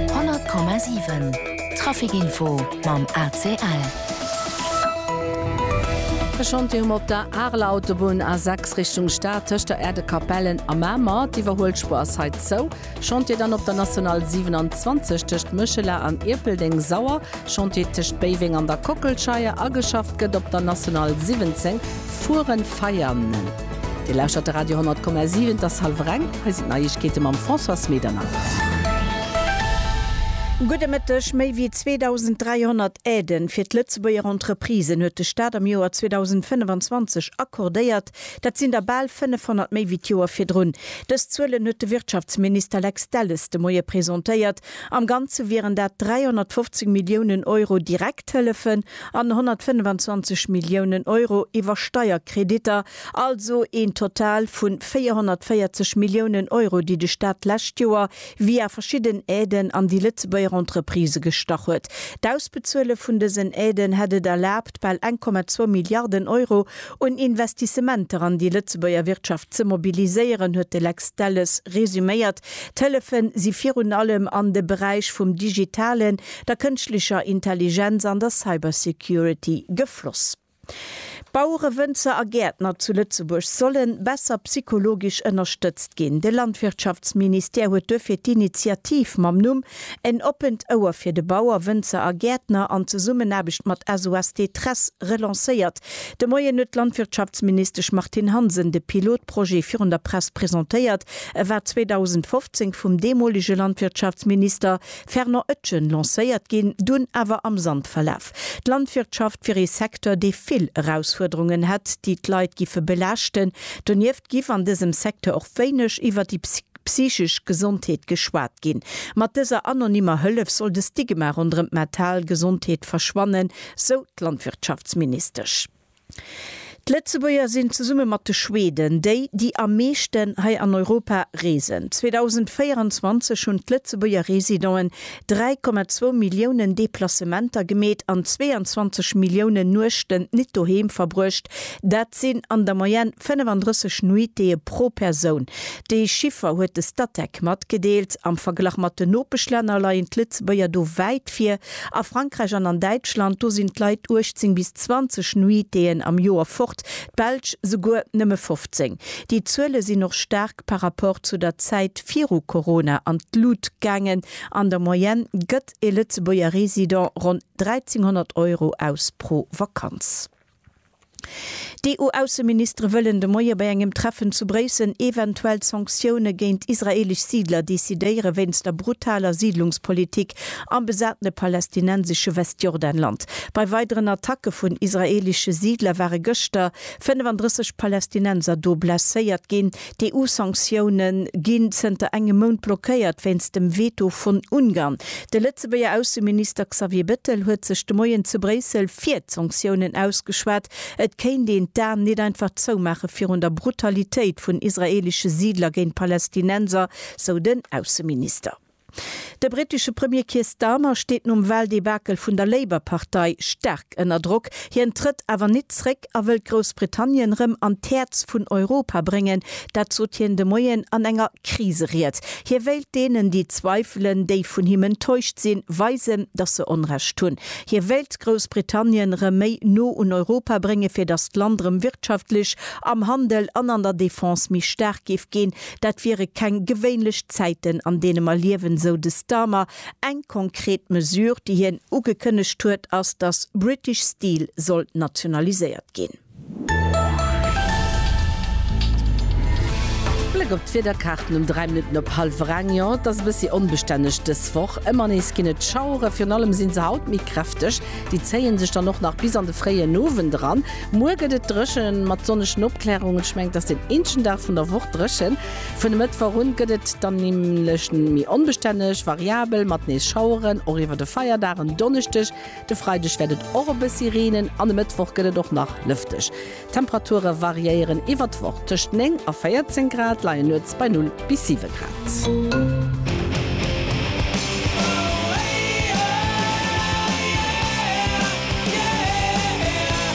100,7 Trafic Info mam ACL. E Chantier um op der Areler Autobunn, A6 Richtung Stad, tëscht der Erdekapellen a Mamer. D'Iwwerhuelspuer ass hei zou. Chantier dann op der National 27 tëscht Méchela an Ierpeldeng-Sauer. Chantier tëscht Béiweng an der Kockelscheier. Ageschafft gëtt op der National 17 Furen-Veianen. Dir lauschtert de Radio 10,7, et ass hallwer eng. Hei sinn d'Neiegkeete mam Françoise Medernach. Gudde Mëtteg. Méi wéi 2.300 Aiden fir d'Lëtzebuerger Entreprisen huet de Staat am Joer 2025 accordéiert. Dat sinn der bal 500 méi wéi d'Joer virdrun. Dës Zuelen huet de Wirtschaftsminister Lex Delles de Moie presentéiert Am Ganze wieren dat 350 Milliounen Euro Direkthëllefen an 125 Milliounen Euro iwwer Steierkreditter, also een Total vu 440 Milliounen Euro, déi de Staat d'lescht Joer via verschidden Aiden an déi Lëtzebuerger Entreprisë gestach huet. D'Ausbezuele vun dësen Aiden hätt et erlaabt, bal 1,2 Milliarden Euro un Investissementer an déi Lëtzebuerger Wirtschaft ze mobiliséieren, huet de Lex Delles resuméiert. D'Hëllefe si virun allem an de Beräich vum Digitalen, der Kënschtlecher Intelligenz an der Cybersecurity gefloss. Bauere, Wënzer a Gäertner zu Lëtzebuerg solle besser psychologesch ënnerstëtzt ginn. De Landwirtschaftsministère huet duerfir d'Initiativ mam Numm En oppent Ouer fir de Bauer, Wënzer a Gäertner an Zesummenaarbecht mat SOS Détresse relancéiert. De Moien huet d'Landwirtschaftsministesch Martine Hansen de Pilotprojet virun der Press presentéiert, E war 2015 vum deemolege Landwirtschaftsminister Fernand Oetgen lancéiert ginn, dunn awer am Sand verlaf. D'Landwirtschaft wier ee Secteur, dee vill Erausfuerderungen hätt, déi d'Leit giffe belaaschten. Donieft giff an dësem Secteur och wéineg iwwer déi psychesch Gesondheet geschwat ginn. Mat dëser anonymer Hëllef soll de Stigma ronderëm d'mental Gesondheet verschwannen, sou d'Landwirtschaftsministesch. D'Lëtzebuerger sinn zesumme mat de Schweden déi, déi am meeschten hei an Europa reesen. 2024 hunn d'Lëtzebuerger Residenten 3,2 Milliounen Deplacementer gemeet an 22 Milliounen Nuechten nit doheem verbruecht. Dat sinn an der Moyenne 35 Nuitéë pro Persoun. Dee Chiffer huet de Statec matgedeelt. Am Verglach mat den Nopeschlänner leien d'Lëtzebuerger do wäit vir. A Frankräich an an Däitschland, do sinn d'Leit 18 bis 20 Nuitéen am Joer fort, d'Belsch souguer nëmme 15. Déi Zuele sinn och staark par rapport zu der Zäit viru Corona an d'Lut gaangen. An der Moyenne gëtt e Lëtzebuerger Resident ronn 1.300 Euro aus pro Vakanz. D'EU-Ausseministere wëllen de Moie bei engem Treffen zu Bréissel eventuell Sanktioune géint israeelesch Siidler decidéiere wéinst der brutaler Siidlungspolitik am besatene palästinensesche Westjordanland. Bei weideren Attacke vun israeelesche Siidler ware gëschter 35 Palästinenser do blesséiert ginn. D'EU-Sanktioune ginn zënter engem Mount blockéiert wéinst dem Veto vun Ungarn. De Lëtzebuerger Ausseminister Xavier Bettel huet sech de Moien zu Bréissel fir d'Sanktiounen ausgeschwat. Et kéint een d'Aen nit einfach zoumaache virun der Brutalitéit vun israeelesche Siidler géint Palästinenser, sou den Ausseminister. De brittesche Premier Keir Starmer steet nom Wahldebakel vun der Labour-Partei staark ënner Drock. Hien trëtt awer nit zréck a wëllt Groussbritannien rëm an d'Häerz vun Europa bréngen. Dat sot hien de Moien an enger Kriseried. Hie wéilt deenen, déi zweifelen, déi vun him enttäuscht sinn, weisen, datt se Onrecht hunn. Hie wéilt Groussbritannien rëm méi no un Europa brénge fir datt d'Land rëm wirtschaftlech, am Handel an an der Defense méi staark géif ginn. Dat wiere keng gewéinlech Zäiten, an deene mer liewen, sou de Starmer. Eng konkret Mesure, déi hien ugekënnegt huet, ass, datt British Steel soll nationaliséiert ginn. Bléck op d'Wiederkaarten um 3 Minutten op hallwer eng, Jo, et ass e bëssi onbestänneg dës Woch. Ëmmer nees ginn et Schauere, virun allem si se haut méi kräfteg. Déi zéie sech dann och nach bis an de fréien Owend eran. Muer gëtt et dréchen mat sonnegen Opklärungen. Ech mengen et ass den eenzegen Dag vun der Woch dréchen. Vun e Mëttwoch un gëtt et dann nämlech méi onbestänneg, variabel mat nees Schaueren, och iwwer de Feierdag en Donneschdeg. De Freideg wäert et och e bëssi reenen an e Mëttwoch gëtt et och nach lëfteg. D'Temperature variéieren iwwer d'Woch, tëscht 9 a 14 Grad leien nuets bei Null. bis 7 Grad.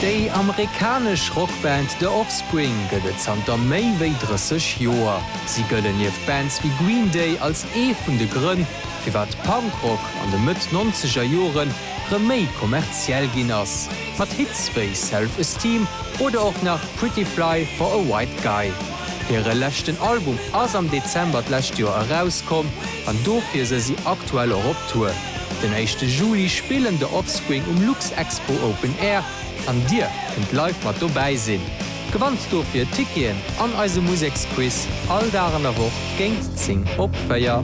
Déi amerikanesch Rockband The Offspring gëtt et zanter méi wéi 30 Joer. Si gëllen nieft Bands wéi Green Day als ee vun de Grënn, firwat Punkrock an de Mëtt-Nonzeger Jore rëm méi kommerziell ginn ass, mat Hits wéi Self Esteem oder och nach Pretty Fly for a White Guy. Hire leschten Album ass am Dezember d'lescht Joer erauskomm an dofir se si aktuell och op Tour. Den éischte Juli spillen The Offspring um Luxexpo Open Air an Dir kënnt live mat dobäi sinn. Gewannt dofir Ticketen an eise Museksquiz all Dag an der Woch géint 10 op 4.